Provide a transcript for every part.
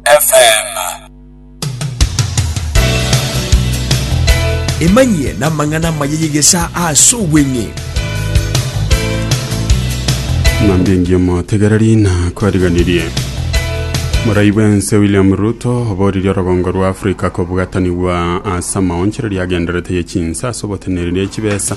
FM. Emanyie n'amang'ana amaya y'egesaa ase obweng'e. Ng'ambi engiya motegereri na kwariganirie morai bwense william ruto oboririe orogongo rwa afrika kobwatanigwa ase amaonchereria agenderete ye chinsa ase oboteneneri ye chibesa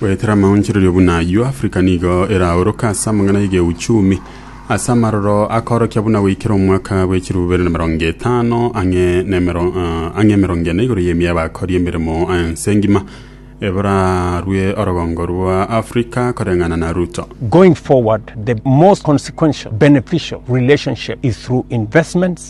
Goetera amaonchorerio buna ayio, Africa nigo eraoroke ase amang'ana y'egeuchumi ase amaroro akoorokia buna goikera omwaka bwe chilifu bibere na emerongo etano ang'e na emero- eh, ang'e emerongo ene igoro y'emia y'abakori emeremo ense ngima eborarue orogongo rwa Africa koreng'ana na Ruto. Going forward, the most consequential, beneficial relationship is through investments,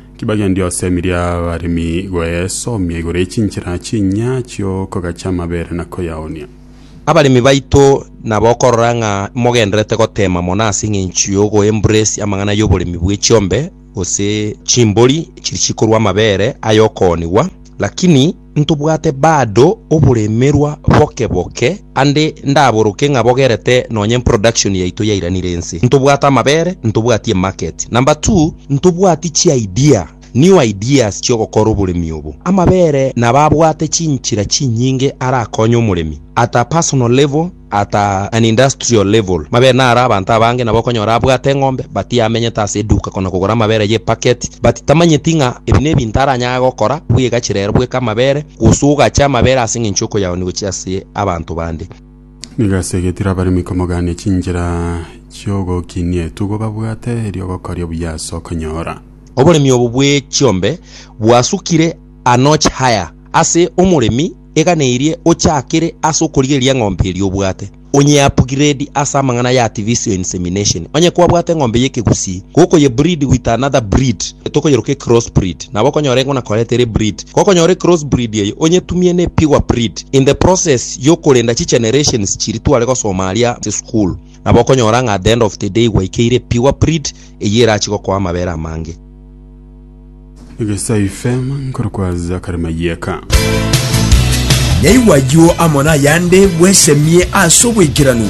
Kibagendia osemi ri'abaremi goesomia igoro ye chinchera chi'enyia chi'okogacha amabere na koyaoonia. Abaremi baito nabokorora ng'a mogendererete goteema mono ase engencho y'ogo embrace amang'ana y'oboremi bwe chiombe gose chimbori chiri chikorua amabere ay'okoonigwa, lakini. Ntobwate bado oboremerwa boke boke, ande ndaboroke ng'a bogerete nonye production yaito yairanire ense. Ntobwate amabere, ntobwati emarket. Number two, ntobwati chi'idea, new ideas chi'ogokora oboremi obo. Amabere nabo abwate chinchera chinyinge arakonye omoremi at a personal level, at an industrial level, mabere naro abanto abange nabo okonyora abwate eng'ombe but yamenyete ase eduka kona kogora amabere ye packet but tamanyeti ng'a ebi nebinto aranyare gokora bwegachire ero bweka amabere gose ogache amabere ase eng'encho okoyaonia gochia ase abanto bande. Nigo ase egetiro abaremi komogania chinchera chiogokinia etugo babwate erio ogokoria buya ase okonyora. Oboremi obo bwe chiombe bwasukire a notch higher ase omoremi. eganeirie ochakire ase okorigereria eng'ombe eria obwate, onye upgrade ase amang'ana ya artificial insemination. Onye kwabwate eng'ombe y'ekegusii, gokoye breed with another breed, tokoyeroka ecross breed, nabo okonyora engo na koreta ere breed. Gokonyora ecross breed eye, onyetumie ne pure breed. In the process y'okorenda chigenerations chiria tware gosoma aria ase school, nabo okonyora ng'a at the end of the day gwaikeire pure breed eyio erachi gokoa amabere amange. Egesayu FM nkorokwa Zakari Mayeka. Naigwa ayio amo nayande bwesemie ase obwaikeranu.